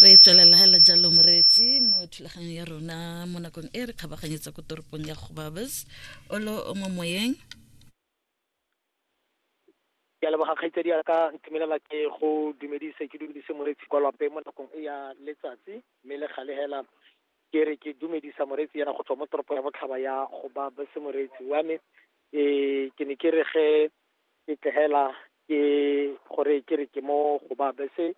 re tswelela hela jalo moreetsi mo thulaganyo ya rona mo nakong e re kgabaganyetsa ko toropong ya gobabes olo o mo moyeng ke a leboga kgaitsedi ya ka ntumelela ke go dumedise ke dumedise moreetsi kwa lwape mo nakong e ya letsatsi mme le gale hela ke re ke dumedisa moreetsi yana go tswa mo toropo ya botlhaba ya gobabes moreetsi wa me um ke ne ke re ge ke tlhela ke gore ke re ke mo go ba bese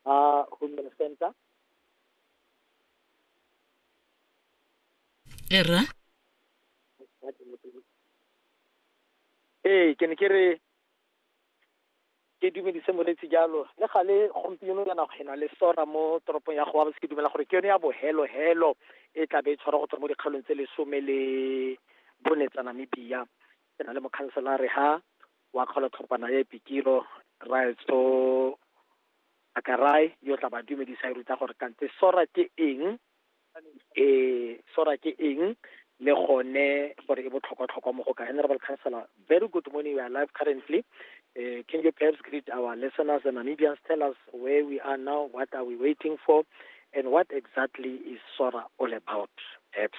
a human center era ee ke ne ke re ke dumedise moretsi jalo le gale gompieno yana go ena le sora mo toropong ya goa ke dumela gore ke yone ya bohelo helo e tla be e tshwara go tswa mo dikgaolong tse lesome le bone tsa namibia ke na le mokhanselare ha wa kgolotlhopana ya epikilo raetso akarai yo tla ba dumedisa e ruta gore kante sora ke eng e sora ke eng le gone gore e botlhokwa-tlhokwa mo go ka honorable councillor very good morning we are live currently uh, can you perhaps greet our listeners the namibians tell us where we are now what are we waiting for and what exactly is sora all about perhaps